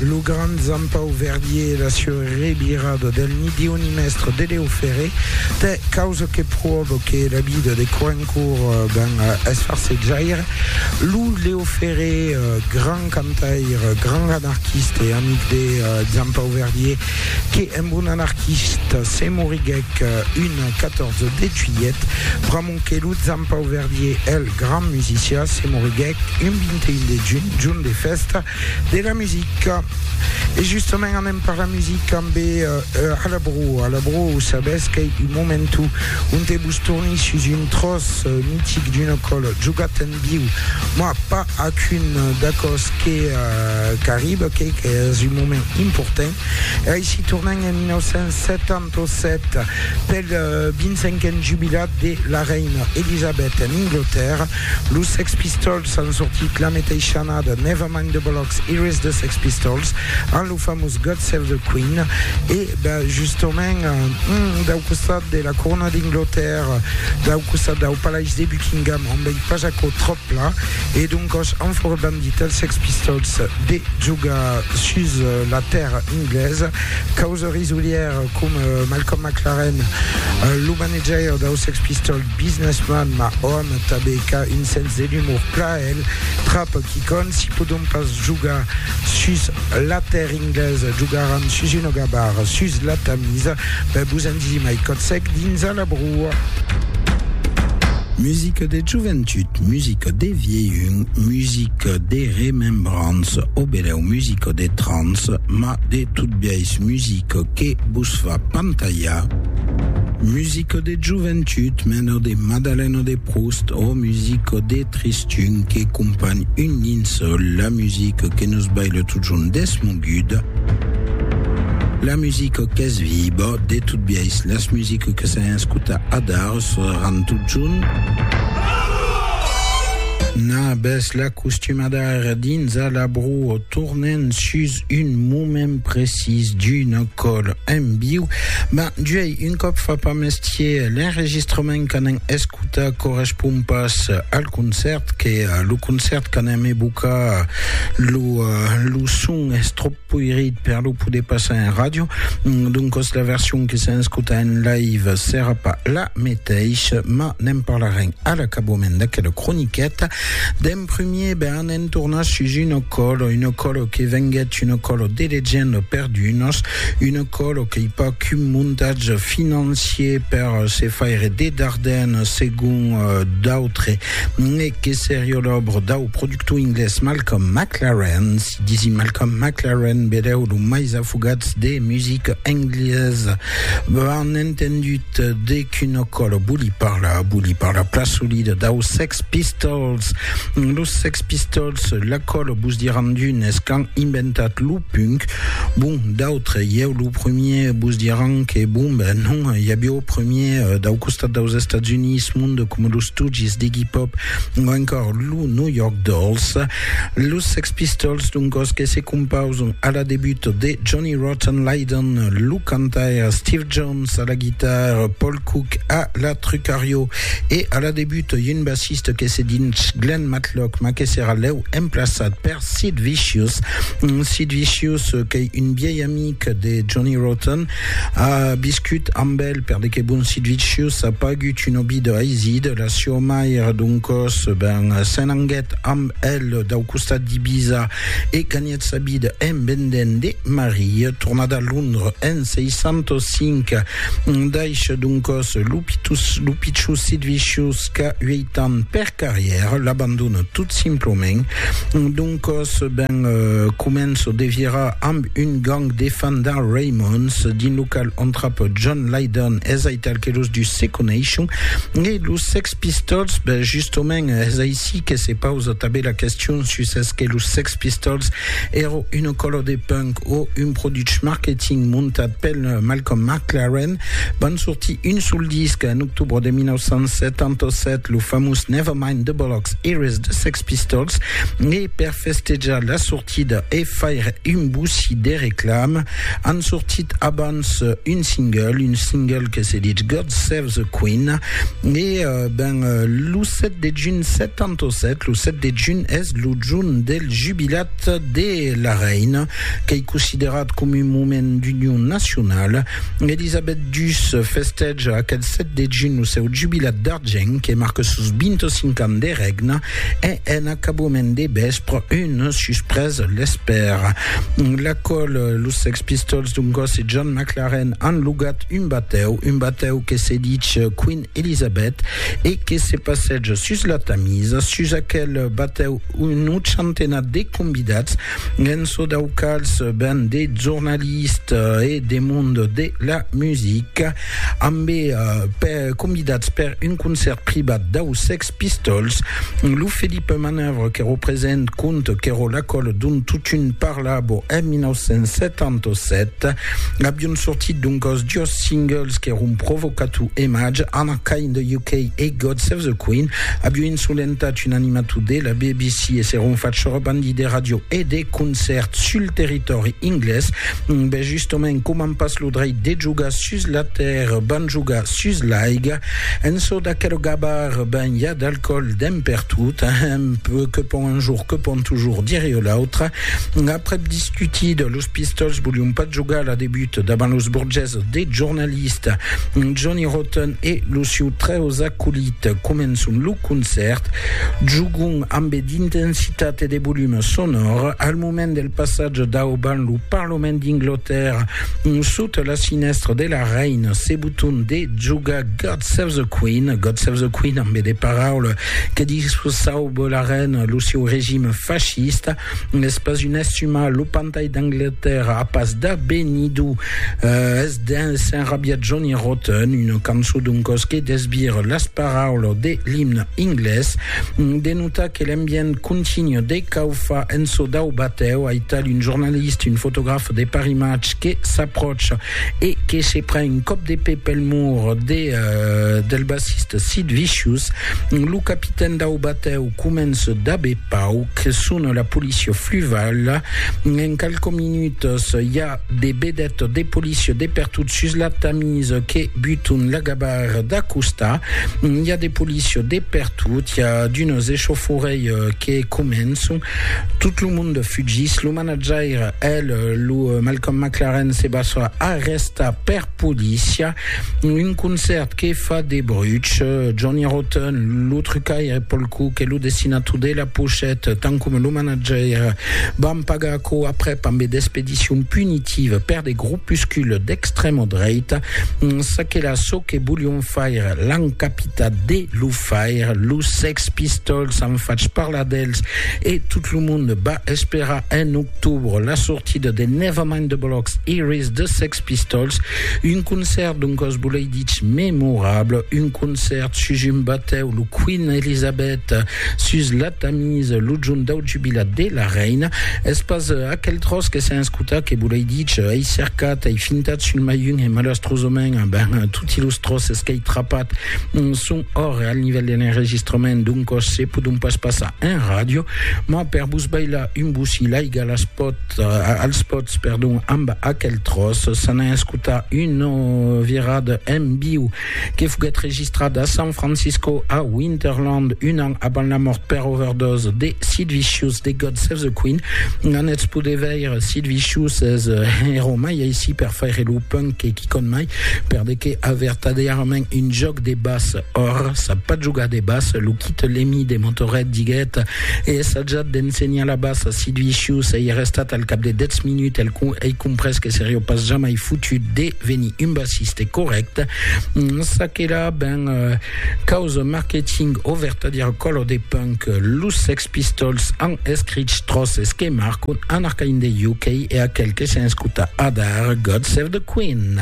Lo grand Jean Pau Verdier e la sua revirada del Nidioni Mèstre de Lèu Ferré tè causa que pròva que la vida de Coencourt ben es farsejaire. Lo Lèu Ferré, grand cantaire, grand anarquista e amic de Jean Pau Verdier, que emb un anarquista se moriguèc un 14 de juilhet, pr'amor Sonque lo Zampau Verdier, el grand musicià, se moriguèc un 21 de junh, jorn de fèsta de la musica. E justament anem per la musica ambe Alabro. Alabro, sabètz qu'ei un momentu onte vos torni sus un tròç mitic d'una còla, jogat en viu. Moi, pas ac un d'aquò's que qu'arriba, qu'ei qu'es un moment important. E aicí tornem en 1970. Tosset pel 25n jubilat de la reina Elisabet en Anglatèrra, los Sex Pistols an sortit la meteisha annada Never Mind the Bollocks, Here Is the Sex Pistols amb lo famós God Save the Queen e justament dau costat de la corona d'Anglatèrra, dau costat dau Palais de Buckingham on vei pas aquò tròp pla e doncòs an fòra bandit els Sex Pistols de jogar sus la tèrra anglesa causa Risolièr com Malcolm McLaren, lo manejaire dau Sex Pistols Businessman, ma òm tabé qu'a un sens de l'umor plaèl trap quicònt si podon pas jogar sus la tèrr inglés jogaran sus una gabar sus la Tamis ben vos en disi mai còt sec dins a la broa. Musica de joventut, musica de viejun, musica de remembrança, o benèu musica de trans, ma de Tot biais musica que vos fa pantalhar, musica de joventut mena de Madalena de Proust ò musica de tristun que companh un linçòl, la musica que nos baila totjorn desmoguda, la musica qu'es viva, de tot biais las musica que s'an escotat adar sonaran totjorn. Nabes la costumada ara dins a la broa tornent sus un moment precís d'una còl en viu, ben, juei, un còp fa pas mestier, l'enregistrament qu'anem escutar correspond pas al concèrt, que lo concèrt qu'anem evocar, lo, lo son es tròp poirit per lo poder passar en ràdio, doncas la version que s'en escuta en live serà pas la meteisha, mas ne'n parlarem a l'acabament d'aquela croniqueta. En premier, ben en tornar sus un ocòlo, un ocòlo que venguèt un ocòlo de legenda per d'unos, un ocòlo qu'ei pas qu'un montatge financier per se faire de Dardenne segon d'autres, ne que serió l'òbra dau productor inglés Malcolm McLaren, si disi Malcolm McLaren beleu lo mais afogats de musica englesa, ben entendut, de qu'un ocòlo voli parlar, voli parlar plan solida dau Sex Pistols. Pistols. Los Sex Pistols, laquòl vos diràn d'unes qu'an inventat lo punk, bon, d'autres, ieu lo premier, vos diràn que bon, ben non, i aviá o premier dau costat daus Estats Units monde coma los Stooges d'Iggy Pop o encòr lo New York Dolls. Los Sex Pistols, d'un còs que se compausan a la debut de Johnny Rotten Lydon, lo cantaire, Steve Jones a la guitarra, Paul Cook a la Trucario e a la debut un bassiste que se dins Glenn Matlock ma que serà lèu emplaçat per Sid Vicious Sid Vicious qu'ei un viei amic de Johnny Rotten a viscut amb el per de que bon Sid Vicious a pagut un obi de haiside la sieu mair doncòs ben s'en anguèt amb el dau costat d'Ibiza e ganhèt Eth sabid embendent de Marie, tornat a Londres en 605, daish doncòs lo pichussit viciós qu'a ueit ans per carrièr, l'abandona tot simplament. Doncòs, ben, començo de virar amb un gang de fans d'Al Raymonds dins lo qual entrapa John Lydon, es aital que los dus se coneishon, e los Sex Pistols, ben, justament, es aicí que se pausa tanben la question sus es que los Sex Pistols èra una còla de punk o un produch marketing montat pel Malcolm McLaren. Van sortir un sol disc en octobre de 1977, lo famós Never Mind the Bollocks Eres de Sex Pistols, e per festejar la sortida e faire un boussi de reclama, an sortit abans un single, un single que se ditz God Save the Queen, e ben lo 7 de junh 77, lo 7 de junh es Lo jorn del jubilat de la reina, qu'ei considerat coma un moment d'union nacionala, Elisabet ii festèja aquel 7 de junh lo seu jubilat d'argent que marca sos 25 ans de règna e en acabament de vèspre una suspresa l'espèra. L'acòl, los Sex Pistols d'un còs e John McLaren an logat un batèu, un batèu que se dich Queen Elisabet, e que se passètz sus la Tamisa, sus aquel batèu un ochantenat de convidats, en çò dau quals ben de jornalistes e de mond de la musica, ambe convidats per un concèrt privat dau Sex Pistols, lo Felipe Manœuvre qu'èro present quand qu'èro l'ecòla dont totun parlavo en 1977, avion sortit doncòs dos singles qu'èron Provocato e Maj, Anarchy in the UK e God Save the Queen, avion insolentat un animator de la BBC e s'èron fach sorbandi de ràdio e de concèrts sul territòri inglés. Ben justement, coman pas lo dreit de jogar sus la tèrra, van jogar sus l'aiga, en çò d'aquel gabar ben ja d'alcòl dens pertot, ahem, que pòm un jorn, que pòm tujorn dire o l'autre, aprèp discutit, los pistòls volion pas jogar la debut davant los burgés de jornalist Johnny Rotten e los sieu trèus acolits, començon lo concèrt, jogon ambe d'intensitat e de volum sonòr, al moment del passatge dau ban lo Parlament d'Inglotèrra, Sota la finèstra de la reina se boton de jogar God Save the Queen, God Save the Queen amb de paraula que disauba la reina lo seu regime fascista, es pas un estumar, lo pantai d'Angleterra a pas d'abenido, uh, es dens s'enrabia Johnny Rotten, una cançó d'un cos que desbira las paraulas de l'imne inglés, de Tà que l'ambient continu de caufa en çò dau batèu, aital un jornalist, un fotograf de parimatge que s'apròcha e que se pren un còp de pè pel mur de del bassist Sid Vicious, lo capitèn dau batèu comença d'aver pauc, sona la policia fluvala, en qualques minutas i a De bedet de policia de pertot sus la Tamise que buton la gabar d'acostar. Hi a de policia de pertot, hi a d'unes echauffourei que començon. Tot lo monde fugís. Lo manatjaire, el, lo Malcolm McLaren, se basa arrestar per policia. Un concèrt que fa de bruch. Johnny Rotten, lo trucaire Paul Cook e lo dessinator de la pochèt, tant coma lo manatjaire, van pagar quò aprèp ambe d'expedicion punitiva per de gropuscules d'extrèma dreita, çaquelà çò que volion faire l'an capitat de lo faire, los Sex Pistols an fach parlar d'els e tot lo monde va esperar en octobre la sortida de Nevermind the Bollocks Here is the Sex Pistols, un concèrt doncòs volei dich memorable, un concèrt sus un batèu, lo Queen Elizabeth sus la Tanis, lo junt dau jubilat de la reina, es pas aquel tròç que sèn escutat que volei dich, ei cercat, ei fintat sul maiun e malastrosament, ben, toti los tròces qu'ei trapat son òrre al nivèl de l'enregistrament, doncòs se podon pas passar en ràdio, mas per vos bailar un bocí l'aiga las pòt, als pòts, perdon, amb aquel tròç, s'anà escutar una virada en viu que foguèt registrat a San Francisco a Winterland un an avant la mòrt per overdose de Sid Vicious de God Save the Queen. N'anètz poder veire Sid Vicious es hèro mai aicí per faire lo punk que quicòm mai, per de que a vertadèrament un jòc de bas. Or, sap pas jogar de bas, lo Kit Lemmy de Motorhead diguèt, Ei assajat d'ensenhar la bas a Sid Vicious, ei arrestat al cap de 10 minuts, ei comprés que serió pas jamai fotut de Veni un bassiste correct, ça que là ben causa marketing o vertadièr color de punk, los Sex Pistols an escrich tròces que marcon un arcaïn de UK e aquel que s'escuta adar, God Save the Queen.